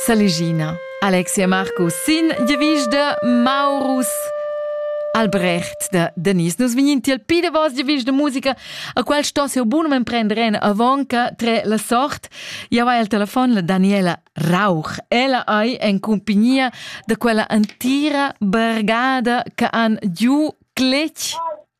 Saligina, Alexia Markus sin devisch de Maurus. Albrecht de Denis. Nus vegnin tiel pi de vos devisch de musica, a qual sto seu bunum prender en avonca tre la sort. Ja va el telefon la Daniela Rauch. Ella ei en compagnia de quella antira brigada che han giu cletg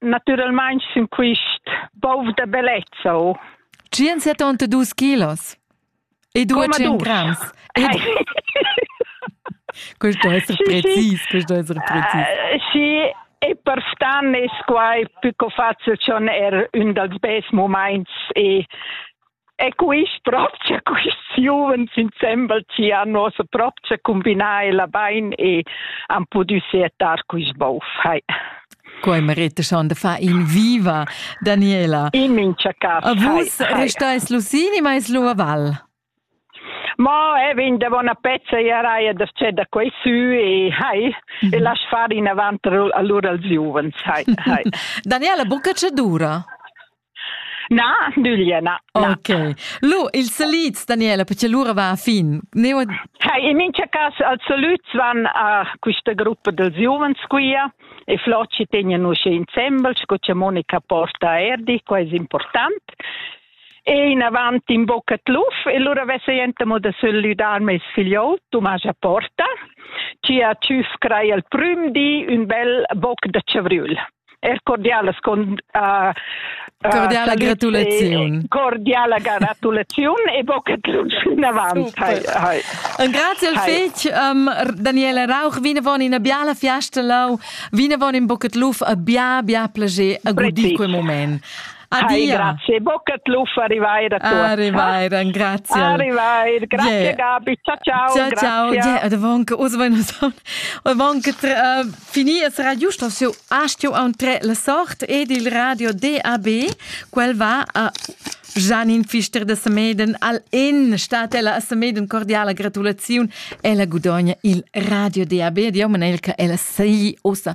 Naturalmein sin quist bov da bellezza. Oh. 172 kilos. E due 100 grams. Ed... questo essere sì, precis, sì. questo essere precis. Uh, sì, e per stan es quai più che facile schon er un dals best moments e E quist propcha quist giuvens insembel chi han nossa propcha combinà ella bain e han pudü seatar quist bov. Hai. Quai merita schon da far in viva, Daniela. In mincha cas. A vus restais Lucini, ma es Lua Val. Ma e vin de bona pezza e raia da c'è da quei su e hai mm -hmm. e lass far in avant allora als giuvens hai hai Daniela buca ce dura Na, nüglia, na. Ok. Lu, ils salits, Daniela, perché l'ura va a fin. Neu... Hey, in mincha cas, als salüts van a questa gruppa dels giuvens quia e Floci tegnen usche insembel, sco che Monica porta Erdi, qua è important. E in avanti in bocca tluf, e lura vessa jentamo da salüdar mes figliol, Tomascha Porta, ci a tschüf crai al prüm di ün bel boc da chavriul. er cordialas con uh, cordiala gratulaziun cordiala gratulaziun e bocca tut fin avant hai, hai. Un grazie al fetg um, Daniela Rauch vinavon in biala fiasta lau vinavon in bocca luf a bia bia plage a gudi quel moment Adia. grazie. Bocca tluffa arrivair a tu. Arrivair, grazie. Arrivair, grazie yeah. Gabi. Ciao ciao. Ciao ciao. Yeah, det var inte oss var något och var inte uh, finir så radio står så ast ju on tre la sort ed il radio DAB quel va a Janine Pfister de Semeden al in stat ella a Semeden cordiala gratulaziun ella gudogna il radio DAB di Manelka ella sei osa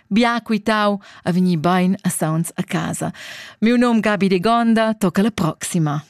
Bia quitau a vegnir bein a sauns a casa. Miu num Gabi Degonda tocca la proxima.